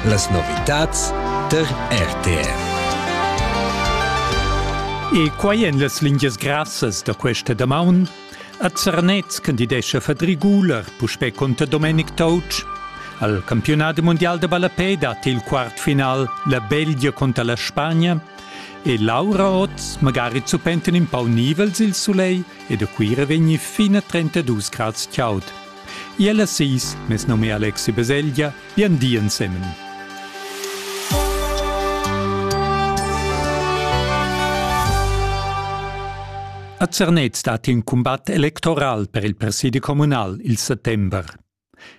Las novitads tar RTR. E quai en las lingias grassas da questa damaun. A Zernez candidescha Fadri Guler, puspè conter Domenic Touch. Al campionat mondial da ballapè dat il quartfinal la Belgia conter la Spagna e Laura oz magari zuppenten in pau nivels il sulei e da Cuira vegni fin a 32 grads chaud. Iel a seis, mes nom è Alexi Beseglia, bien di ensemen. A Zernez dat in combat electoral per il presidi communal il settember.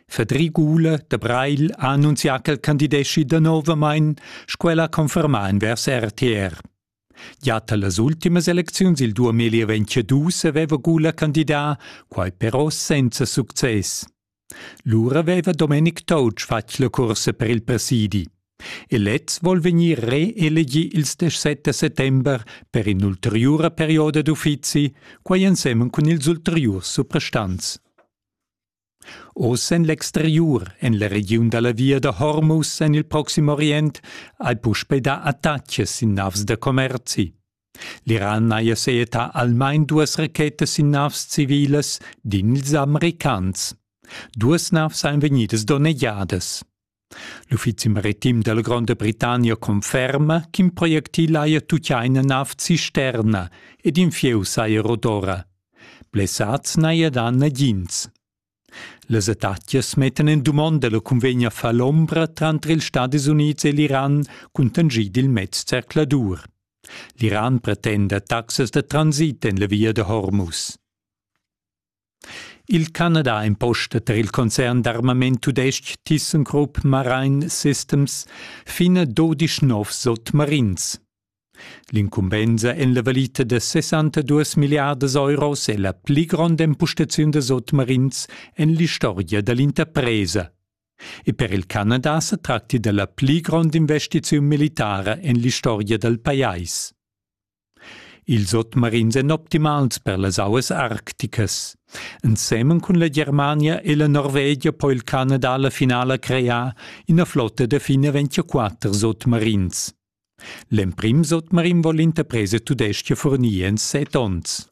Federico Ule de Breil ha annunzià ch'el candideschi danovamain, sco el ha confermà envers RTR. Gia talas ultimas elecziuns il 2022 aveva Gula candidà, quai però senza success. Lura aveva Domenic Toutsch fatg la cursa per il presidi. E lez vuol vegnir reelegi il 17 settember per in'ulteriura perioda d'uffizi, quai ensemen cun ils ulteriurs suprastants. Oz en l'exteriur, en la regiun da la via da Hormuz en il Proxim Orient, hai puspè dà attacks sin navs da commerzi. L'Iran haja sejetà almain duas rachetas sin navs civilas, din ils Americans. Duas navs ein vegnidas donnegiadas. L'uffizi maritim della Gronda Britannia conferma ch'in projectil haja tutgia ina nav cisterna ed in fieu saja rodora. Blessads n'haja dà nagins. Las attacchias mettan en dumonda la cunvegna falombra tranter ils Stadis Unids e l'Iran cuntanschid il mez zercladur. L'Iran pretenda taxas da transit en la via da Hormuz. Il Canada imposta tar il concern d'armament tudestg ThyssenKrupp Marine Systems fina dodisch novs sotmarins. L'incumbensa en la valita da 62 milliardas euros è la pli gronda impostaziun da sotmarins en l'istorgia da l'interpresa. E per il Canada sa tracti da la pli gronda investiziun militara en l'istorgia dal pajais. Ils sotmarins èn optimals per las auas arcticas. Ensemen cun la Germania e la Norvegia po il Canada la finala crear ina flotta da fin a 24 sotmarins. L'emprim sotmarin vol l'interpresa tudestga furnir en set onns.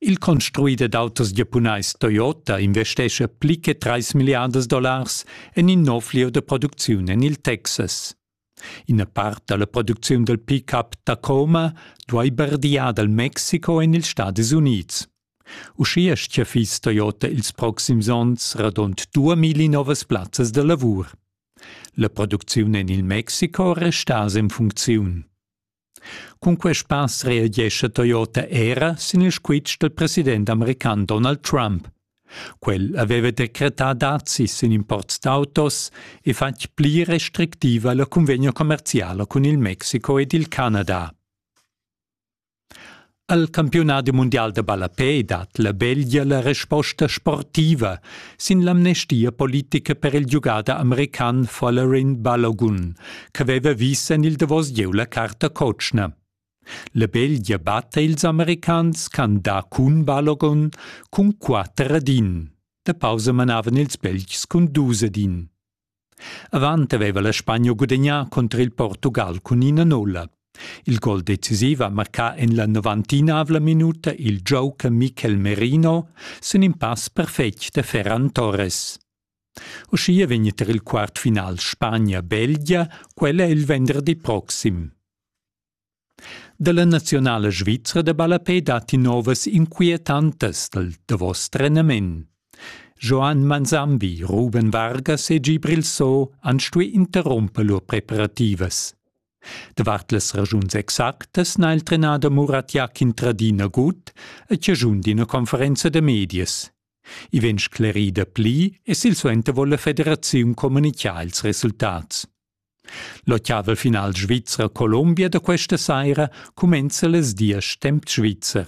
Il construider d'autos giapunais Toyota investescha pli che trais milliardas dollars en in nov lieu da producziun en il Texas. Ina part da la producziun dal pick-up Tacoma duai bardiar dal Mexico en ils Stadis Unids. Uschia stgaffis Toyota ils proxims onns radund 2000 novas plazzas da lavur. La producziun en il Mexico resta en funcziun. Cun quest pass reagescha Toyota era sin il squitsch dal president american Donald Trump. Quel aveva decretà dazis sin imports d'autos e fatg pli restrictiva la cunvegna commerziala cun il Mexico ed il Canada. Al campiunadi mundial da ballapè dat la Belgia la resposta sportiva sin l'amnestia politica per il giugader american Folarin Balogun, ch'aveva vis en il davos gieu la carta cotschna. La Belgia batta ils americans can da cun Balogun cun quatter ad in. Da pausa manavan ils Belgs cun dus ad in. Avant aveva la Spagna gudagnà cunter il Portugal cun ina nulla. Il gol decisiv ha marcà en la novantinavla minuta il gioca Mikel Merino sin in pass perfetg da Ferran Torres. Uschia vegn tar il quart final Spagna-Belgia, quella il venderdi proxim. Dalla nazionala svizra da ballapè datti novas inquietantas dal davos trenament. Joan Manzambi, Ruben Vargas e Gibril So han stuì interrumper lur preparativas. Davart las ragiuns exactas n'ha il trenader Murat Jakin Tradina gut e chaschun d'ina conferenza da medias. I vegn sclerida pli e silsuenter vuol la federaziun communicar ils resultats. L'ottavel final Svizra-Colombia da questa saira cumenza les diesch temp svizzer.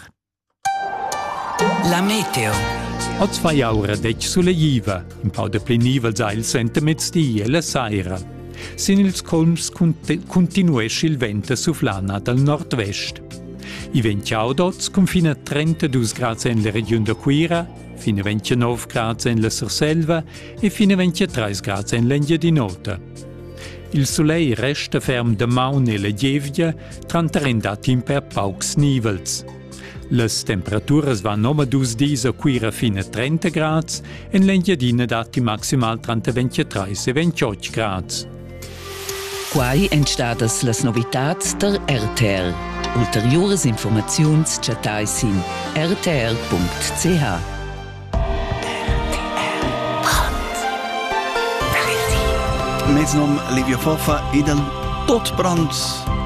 La meteo. Oz fa aura detg suleiva, in pau de plenivel sa il sentemezdi e la saira. Sin ils colms continuesce il vent a suflana dal nord-vest. I vent chaudots confina 32 grads en la regiun da Cuira, fino 29 grads en la Surselva e fin 23 grad en l'Engiadin'Ota. Il soleil resta ferm damaun e la gievgia, tranter in datim per paucs nivels. Las temperaturas van omadus dis a Cuira fin a 30 grads, en l'Engiadina datti maximal tranter 23 e 28 grads. Quai èn stadas las novitads der RTL. Ulteriuras informaziuns chattai sin rtl.ch. Mes nom Livio Foffa ed al tot brand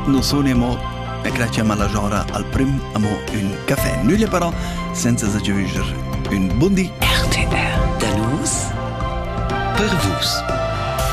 nu suni amo e grazia ma la Jora al prim amo ün café. Nüglia però senza s'aggiunger ün bundi RTR da nus per vus.